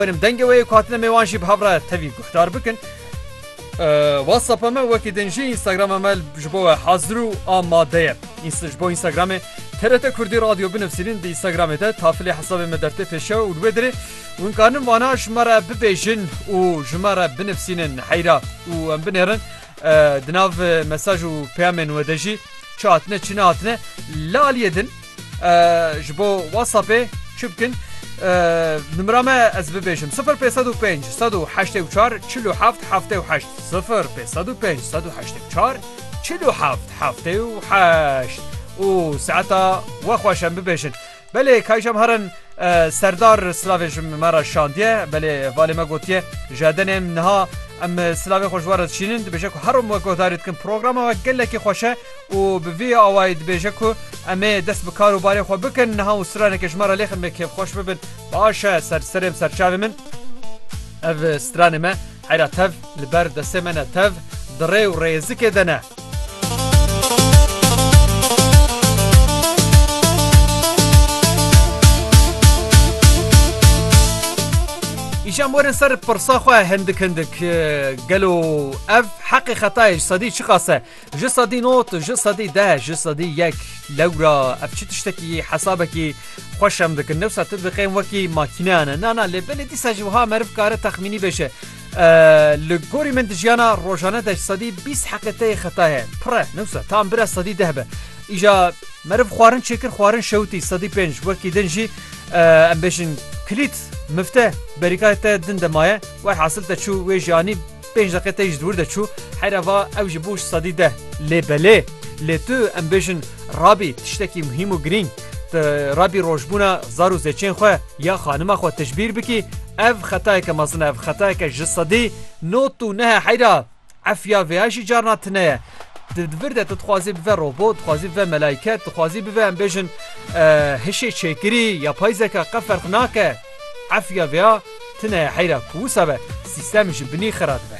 Benim dengê wê yê ku hatine mêwan jî bi hev re tevî guhdar bikin. WhatsAppa me wekî din jî Instagrama me ji bo we hazir û amade ye. Ji bo Instagramê TRT Kurdî Radyo binivîsînin di Instagramê de tafilê hesabê me der tê pêşew û li wê dirê hûn karin vana ji me re bibêjin û ji me re binivîsînin heyra û em binêrin di nav mesaj û peyamên we de jî çi hatine çi nehatine li aliyê din Ji bo WhatsAppê çi bikin? Nimira me ez bibêjim sifir pê sed û pênc sed û heştê û çar çil û heft heftê û heşt sifir pê sed û pênc sed û heştê û çar çil û heft heftê û heşt û saeta we xweş em bibêjin. Belê kayşem herin serdar silavê ji me re şandiye belê valê me gotiye ji edenêm niha em silavê xwe ji we re dişînin dibêje ku herom we guhdarî dikin programa we gelekî xweş e û bi vî awayî dibêje ku em ê dest bi kar û barê xwe bikin, niha û straneke ji me re lêxin me kêfxweş bibin. Baş e ser serê serçavê min ev stranê me heyra tev li ber destê me ne, tev di rê û rêzikê de ne. Îşem werin ser pirsa xwe hindik hindik, gelo ev heqê xetayê ji sedî çiqas e? Ji sedî not, ji sedî deh, ji sedî yek. Lewra ev çi tiştekî yê hesabekî xweş em dikin. Dewsa tu diqên wekî makîneyan e. Na na lê belê dîsa jî wiha meriv kare texmînî bêje. Li gorî min di jiyana rojane de ji sedî bîst heqeteyê xeta heye. Pir e. Newsa tam bira sedî deh be. Îja meriv xwarin çêkir xwarin şewitî sedî pênc. Wekî din jî em bêjin kilît mifte berîkayê te din de maye. Welhasil te çû wê jî anî. Pênc deqe tê ji dûr de çû heyra va ew ji bo ji sedî deh lê belê lê tu em bêjin rabî tiştekî muhîm û girîng tu rabî rojbûna zar û zêçên xwe ya xanima xwe tijbîr bikî ev xetayeke mezin e ev xetayeke ji sedî not û neh e heyra efya vê ya jî carna tune ye di vir de tu dixwazî bive robot dixwazî bive melayket dixwazî bive em bêjin hişê çêkirî ya payzeka qe ferq nake efya vê ya Tune ye heyra ku wisa be sîstem ji binî xira dibe.